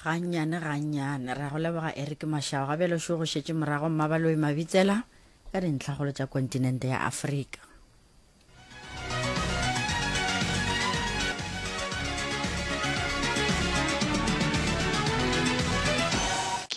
gannyane gannyane ra go leboga eric mašao ga bjalo šo go šetše morago mmabaloi mabitsela ka dintlhagolo tša kontinente ya afrika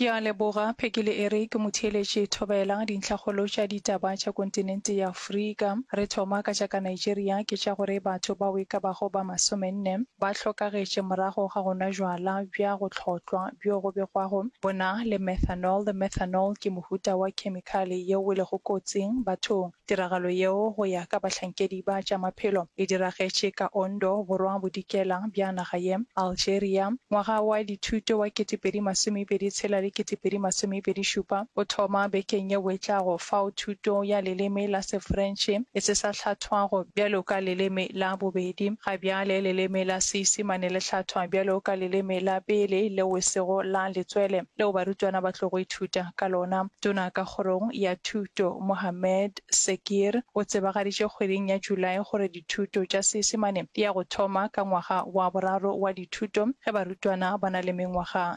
ke a leboga phekele ere ke motheeletše thobela dintlhagolo tša ditaba tša kontinente ya Afrika. Re thoma ka tša ka Nigeria, ke tša gore batho bao e ka bago ba masomenne ba hlokagetše morago ga go nwa jwala bja go hlotlwa bjo go begwago bo na le methanol. Methanol ke mohuta wa khemikhale yeo e lego kotsing bathong. Tiragalo yeo go ya ka bahlankedi ba tša maphelo e diragetše ka Ondo, Borwa Bodikela bja naga ye, Algeria. Ngwaga wa dithuto wa kete pedi masomepedi tshela le kete pedi masomepedi šupa o thoma bekeng yeo e tlago fao thuto ya leleme la Sefrentšhe e se sa hlathwago bjalo ka leleme la bobedi. Ga bjale leleme la Seisimane le hlathwa bjalo ka leleme la pele leo e sego la letswele leo barutwana ba tlogo ithuta ka lona. Tona ka Kgorong ya Thuto, Mohammed Sekir, o tsebagaditše kgweding ya Julae gore dithuto tša Seisimane di ya go thoma ka ngwaga wa boraro wa dithuto ge barutwana ba na le mengwaga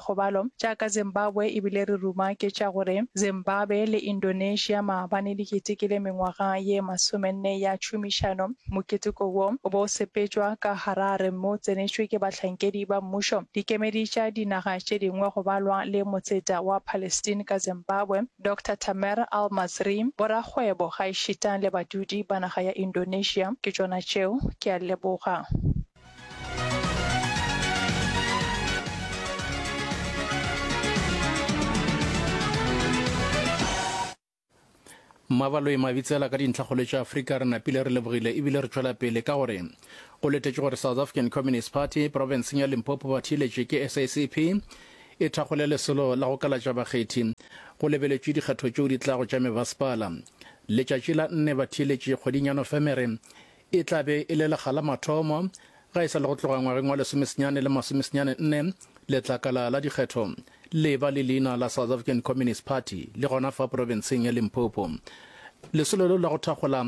kgobalo tša ka Zimbabwe e bile re ruma ke tša gore Zimbabe le Indonesia maabane di ketekile mengwaga ye masomenne ya tšhomišano. Moketeko wo o bo o sepetšwa ka Harare mme o tsenetšwe ke bahlankedi ba mmušo, dikemedi tša dinaga tše dingwe go balwa le motseta wa Palestine ka Zimbabwe, Doctor Tamer Al-Masri, borakgwebo gaešitang le badudi ba naga ya Indonesia. Ke tšona tšeo. Ke a leboga. mabaloe mabitsela ka dintlhakgolo tša afrika re napile re lebogile ebile re tšwela pele ka gore go letetše gore south african communist party provinceng ya limpopo ba thiletše ke sacp e thakgole lesolo la go kalatša bakgethi go lebeletše dikgetho tšeo di tlago tša mebasepala letšatši la nne ba thiletše kgweding ya nofemere E tla be e le lekga la mathomo, ga e sa le go tloga ngwageng wa lesomesenyane le masomesenyane nne, letlakala la dikgetho le ba le leina la South African Communist Party le gona fa porofenseng ya Limpopo. Lesolo leo la go thakgola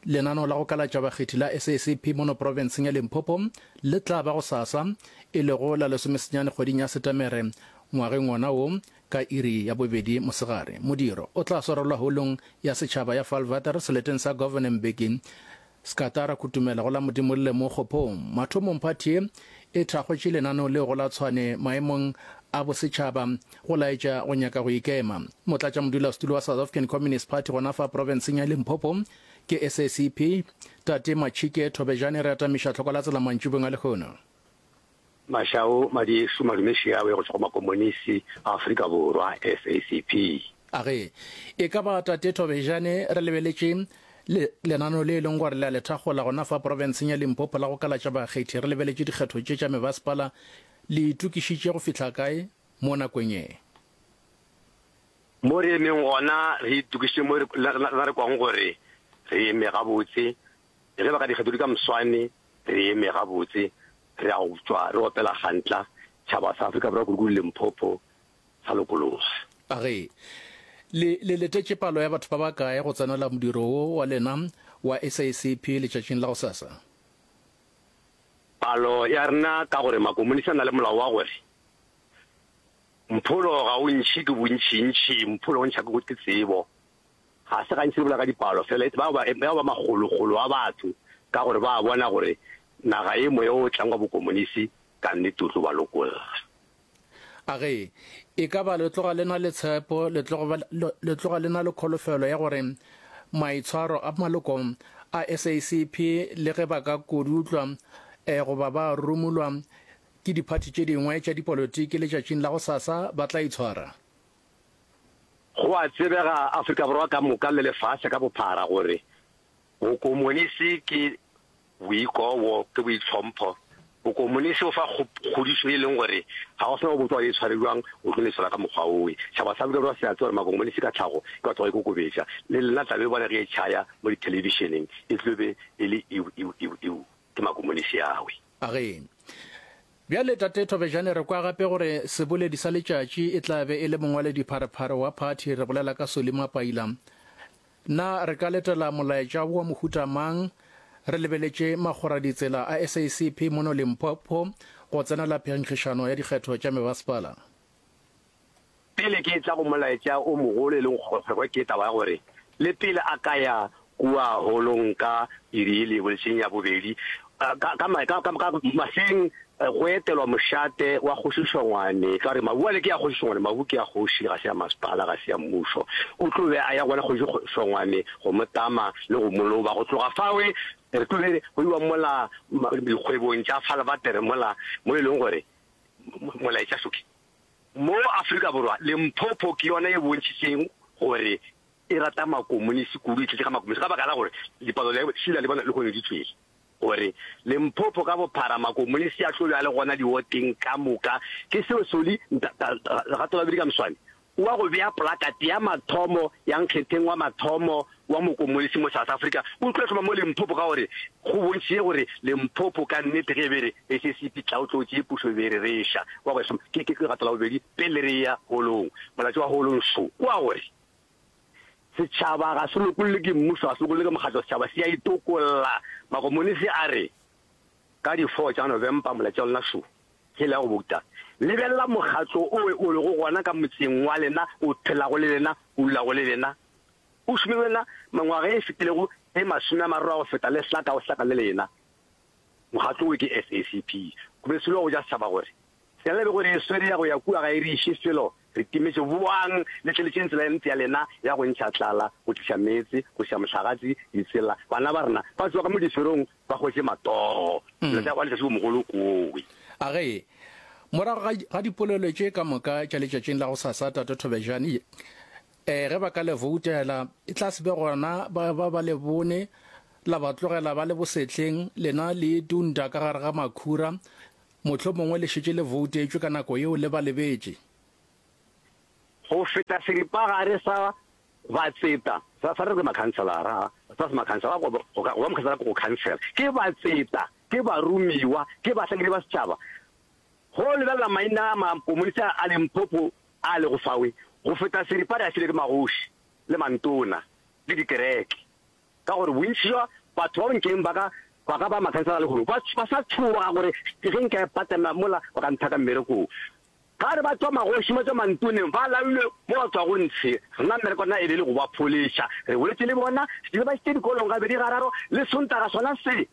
lenano la go kalatša bakgethi la SACP mono porofenseng ya Limpopo le tla ba gosasa, e lego la lesomesenyane kgweding ya Setemere ngwageng wona wo, Ka iri ya bobedi mosegare, modiro o tla swarelwa Holong ya Setšhaba ya Falvater, seleteng sa Governor Mbeki. Scatara Kutumela go la Modimolle mo Kgophong. Mathomong phathi ye e thakgotše lenaneo leo go la Tshwane maemong a bosetšhaba go laetša go nyaka go ikema. Motlatšamodulasetulo wa South African Communist Party gona fa profenseng ya Limpopo ke SACP, Tate Machike Thobejane re atamiša tlhoko la tsela mantšibong a lehono. Mashau Madiešu Madume Šiawe go tšwa go Makomonisi a Afrika Borwa, SACP. A re, E ka ba Tate Thobejane re lebeletše le, lenaneo le e leng gore le a le thakgola gona fa porofenseng ya Limpopo la go kalatša bakgethi, re lebeletše dikgetho tše tša mebasepala, le itokišitše go fihla kae mo nakong ye? Mo re emeng gona, re itokišitše mo re, re na re kwago gore re eme gabotse, Ge ba ka dikgetho di ka moswane, re eme gabotse, re a go tšwa re opela gantla, tšhaba sa Afrika Borwa kudu-kudu Limpopo, sa lokologa. A re, Le, le letetše palo ya batho ba bakae go tsenela modiro wo wa lena wa SACP letšatšing la gosasa? Palo ya rena, ka gore Makomonisi a na le molao wa gore, Mpholo ga o ntšhi ke bontšintši, Mpholo o ntšha ke tsebo. Ga se gantši re bolela ka dipalo fela, e ba ba, e ba ba makgolokgolo a batho, ka gore ba a bona gore naga ye moya o tlang wa bokomonisi ka nnete o tlo ba lokolla. A re, E ka ba le tloga le na le tshepo, le tloga, ba, le, le tloga le na le kholofelo ya gore maitshwaro a maloko a SACP, le ge ba ka kodutlwa eh, goba ba rumulwa ke diphathi tše dingwe tša dipolotiki letšatšing la gosasa, ba tla itshwara? Go a tsebega Afrika Borwa ka moka le lefase ka bophara gore bokomonisi ke boikobo, ke boitlhompho. Bokomonisi o fa kgodišo e leng gore ga go se na go botsa gore e tshware bjang, o tlo lesola ka mokgwa owe. Tšhaba sa Afrika Borwa se a tseba gore makomonisi ka tlhago ke batho ba ikokobetša. Le lena tla be bona ge e tšhaya mo dithelebišeneng e tlo be e le eu-eu-eu-eu ke makomonisi awe. A re, Bjale, Tate Thobejane, re kwa gape gore seboledi sa letšatši e tla be e le mongwaledipharephare wa phathi, re bolela ka Solly Mapaila. Na re ka letela molaetša wo wa mohuta mang? Re lebeletše makgoraditsela a SACP mono Limpopo go tsenela phenkgišano ya dikgetho tša mebasepala. Pele ke etla go molaetša o mogolo e lego kgwekgwekgwe ke taba ya gore le pele a ka ya kua holong ka iri ye lengwe leseng ya bobedi ka, ka, ka, ka, ka maseng go etelwa mošate wa Kgoši Šongwane, ka gore mabu ale ke a Kgoši Šongwane, mabu ke a kgoši, ga se ya masepala, ga se ya mmušo. O tlo be a ya gona Kgoši Šongwane go mo tama le go mo loba. Go tloga fawe re tlo be go iwa mola dikgwebong tša Falvater mola mo e leng gore molaetša Soki Mo Afrika Borwa, Limpopo ke yona e bontšhitšeng gore e rata Makomonisi kudu, e tletše ka Makomonisi, ka baka la gore dipalo le šila le bona lehono di tšwele gore Limpopo ka bophara Makomonisi a tlo ba le gona diwoteng ka moka. Ke seo Soli Nta-Lerato Babedi Kamswane o a go bea polakate ya mathomo ya nkgetheng wa mathomo wa mokomonisi mo South Africa o tlo hloma mo Limpopo ka gore go bontšitše gore Limpopo ka nnete ge e be re SACP tlaotlotše ye pušo e be e re reša kwa go hloma ke ke legato la bobedi pele re ya holong. Molato wa holong šo ke wa gore setšhaba ga se lokollwe ke mmušo, ga se lokollwe ke mokgatlo, setšhaba se a itokolla. Makomonisi a re ka di 4 tša November molato wa lona šo ke le ya go bouta. Lebelela mokgatlo o o lego gona ka motseng wa lena, o phelago le lena, o dulago le lena. O šome le wena mengwaga e fetilego e masome a mararo a go feta le hlaka go hlaka le lena. Mokgatlo wo ke SACP. Go be selo go ja setšhaba gore tsela le bego re e swere ya go ya kua ga e re iše felo re timetše boang le tleletšeng tsela e ntle ya lena ya go ntšha tlala, go tliša meetse, go ša mohlagatsi, ditsela, bana ba rena ba tsoge mo diferong ba hwetše matogo. Dilo tša go letšatši bo mogolo kowe. A re, Morago ga dipolelo tše ka moka tša letšatšing la go sasa, Tate Thobejane Ee, ge ba ka le voutela, e tla se be gona ba ba ba le bone, la ba tlogela ba le bosehleng, lena le itunta ka gare ga makhura, mohlomongwe le šetše le voutetšwe ka nako yeo le ba lebetše. Go feta seripagare sa batseta, sa, sa re re makhanselara, sa semakhanselara, go, go, go ba mokhanselara ke go khansela, ke batseta, ke baromiwa, ke bahlakedi ba setšhaba, Go lebelela maina a makomonisa a Limpopo a a lego fawe go feta seripa re a filwe ke magoši le mantona le dikereke, ka gore bontši bja batho ba bonkeng ba ka ba ka ba makhansala lehono ba ba sa tšhoga gore ge nka e patela mola ba ka nthaka mmerekong. Ga re ba tšwa magoši ba tšwa mantoneng ba lailwe mo ba tšwago ntshe, rena mmereko na e be e le go ba pholeša. Re boletše le bona, re ba išitše dikolong gabedi gararo le Sontaga sona se.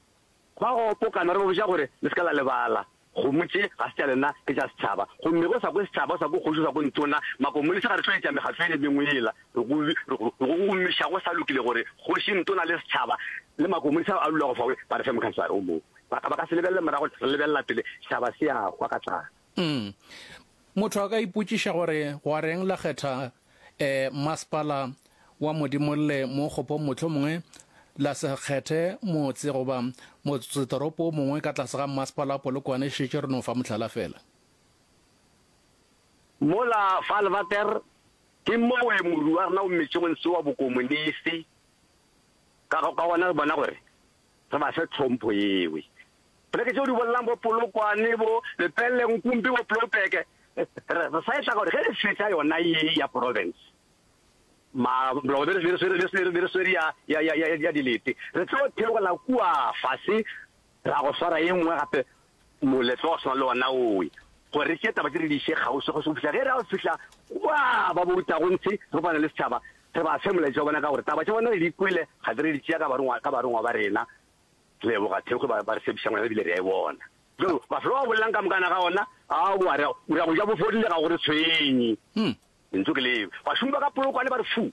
Ba gopokana re ba botša gore, Le se ka la lebala, kgomo tše ga se tša lena, ke tša setšhaba. Gomme ge o sa kwe setšhaba, o sa kwe kgoši, o sa kwe ntona, makomolese ga re tlo etša mekgatlo ele mengwe yela re go re go gomiša go sa lokile gore kgoši, ntona le setšhaba le makomolese ao a lulago fawe ba re fe mokhanselara o mongwe. Ba ka ba ka se lebelele morago, re lebelela pele, setšhaba se a hwa ka tlala. Motho a ka ipotšiša gore wareng la kgetha Mmasepala wa Modimolle mo Kgopong mohlomongwe la se kgethe motse goba motsetoropo o mongwe ka tlase ga Mmasepala wa Polokwane, šetše re no fa mohlala feela. Mola fa Alvater ke mowe moru wa rena o mmetše go ntshiwa Bokomonisi, ka gona re bona gore Re ba fe tlhompho yewe. Poleke tšeo di bolelang bo Polokwane, bo Lepelle, Nkumpi, bo Ploupeke, re sa etla gore ge re fetša yona ye ya province, ma, mlogo be re swere ya, ya, ya, ya, ya dilete, re tlo theogela kua fase ra go swara ye nngwe gape Moletlo wa go swana le wona owe, gore re tšee taba tše re di iše kgauswi kgauswi go fihla ge re a fihla kwa ba borutago ntshi re kopana le setšhaba, re ba fe molaetša wa bona ka gore taba tša bona re di kwele ga di re di tšea ka barongwa ka barongwa ba rena. Leboga Thekgwe ba ba re tshephiša ngwana ebile re a e bona. Bjalo mafelo a bolelang ka mokana ga ona a a boa re a re a go ja bo fodile ga go re tshwenye. Lentšu ke leo. Bašomi ba ka Polokwane ba re fu.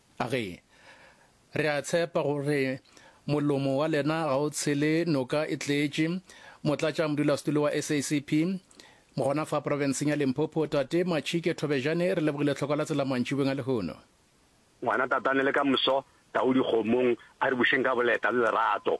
Age, re a tshepa gore molomo wa lena ga o tshele noka e tletše. Motlatšamodulasetulo wa SACP gona fa profenseng ya Limpopo, Tate Machike Thobejane, re lebogile tlhoko la tsela mantšibeng a lehono. Ngwana tatane le ka moso, tau dikgomong, a re bušeng ka boleta le lerato.